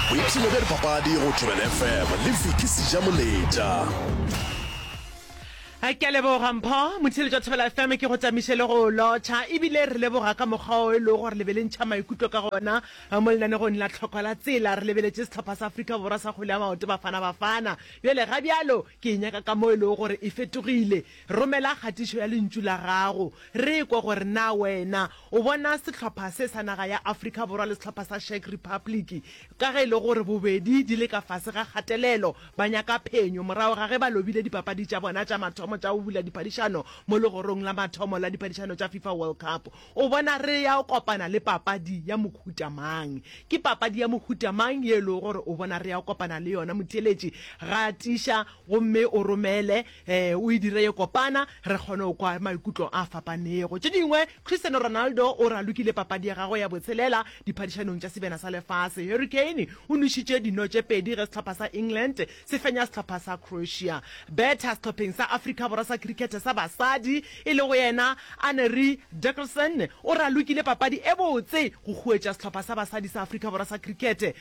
boipshino bja dipapadi go thobela fm le viki sejamoletša a ke a leboga mpho motshele jwa thobela fm ke go tamiše le go lotšha ebile re leboga ka mokgwa o e lego gore le be le ntšha maikutlo ka gona mo lenanegong la tlhoko la tsela re lebeletše setlhopha sa aforika borwa sa kgole ya maoto bafana bafana bjale ga bjalo ke e nyaka ka mo e lego gore e fetogile Romela kgatišo ya Lentšu la gago re kwe gore na wena o bona sehlopha se sa naga ya Afrika Borwa le sehlopha sa Czech Republic ka ge e le gore bobedi di le ka fase ga kgatelelo, ba nyaka phenyo morago ga ge ba lobile dipapadi tša bona tša mathomo tša go bula diphadišano mo legorong la mathomo la diphadišano tša Fifa World Cup. O bona re ya kopana le papadi ya mohuta mang? Ke papadi ya mohuta mang ye e lego gore o bona re ya kopana le yona? Motheeletši, Gatiša gomme o romele. Ee, o e dire ye kopana re kgone go kwa maikutlo a fapanego. Tše dingwe, Cristiano Ronaldo o ralokile papadi ya gagwe ya botshelela diphadišanong tša sebjana sa lefase. Harry Kane o nwešitše dino tše pedi ge sehlopha sa England se fenya sehlopha sa Croatia. Betha sehlopheng sa Afrika Borwa sa khirikhethe sa basadi e lego yena Anneri Dickerson o ralokile papadi e botse go khuetša sehlopha sa basadi sa Afrika Borwa sa khirikhethe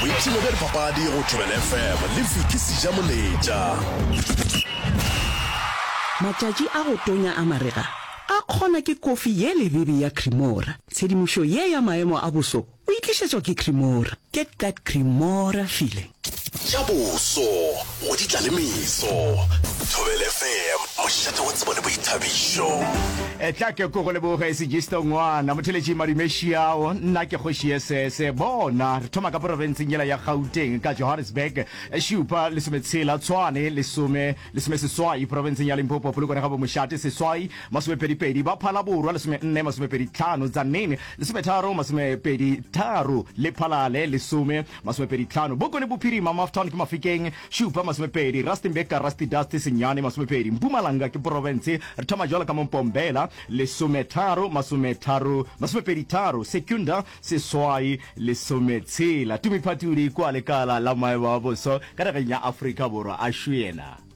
boipshino bja dipapadi go thobel fm le viki seja moletša Matšatši a go tonya a marega a kgona ke kofi ye lebebe ya Cremora. Tshedimošo ye ya maemo a boso o e tlišetšwa ke Cremora. Get that Cremora feeling. Tša boso go di tla le meso. Thobela FM, mošate wa tsebo le boithabišo. Etla ke ko go leboge Sigisto Ngwana, motheletši madume šiao, nna ke kgoši ye sese. Bona, re thoma ka porofenseng yela ya Gauteng ka Johannesburg, šupa lesometshela, Tshwane lesome, lesome seswai, porofenseng ya Limpopo, Polokwane ga Bomošate seswai, masomepedipedi, ba Phala Borwa lesome nne, masomepedi tlhano, Tzaneen lesometharo, masomepedi tharo, le Phalale lesome. Masomepedi tlhano, Boko le Bophirima, Maftown ke Mafikeng, Šupa, Masomepedi, Rustenburg ka Rusty Dusty, Senyane, Masomepedi, Mpumalanga ke Porofense, re thoma jalo ka mo Mpombela, Lesometharo, Masometharo, Masomepedi tharo, Secunda, Seswai, Lesometshela, Tumiphatudi kua lekala la maemo a boso ka nageng ya Afrika Borwa a šuena.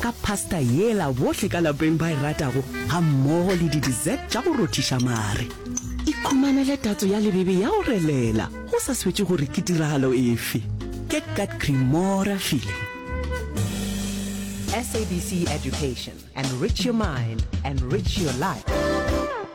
ka pasta yela bohle ka lapeng ba e ratago ga mmogo le di-dessert tša go rothiša mare. Ikhumanele tatso ya lebebe ya go relela go sa swetše gore ke tiragalo efe. Get that Cremora feeling. SABC Education. Enrich your mind, enrich your life.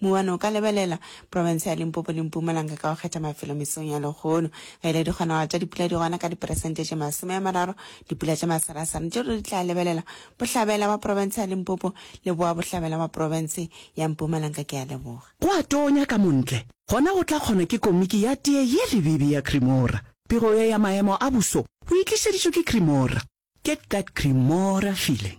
Mouwane o ka lebelela profense ya Limpopo le Mpumalanga ka go kgetha mafelo mesong ya lehono. Ge e le dikgonagalo tša dipula di gona ka diperesente tše masome a mararo, dipula tša masarasara tše ruri di tla lebelela bohlabela bwa profense ya Limpopo le boa bohlabela bwa profense ya Mpumalanga. Ke a leboga. Go a tonya ka montle, gona go tla kgona ke komiki ya tee ye lebibi ya Cremora. Pego ye ya maemo a buso o e tlišeditšwe ke Cremora. Get that Cremora feeling.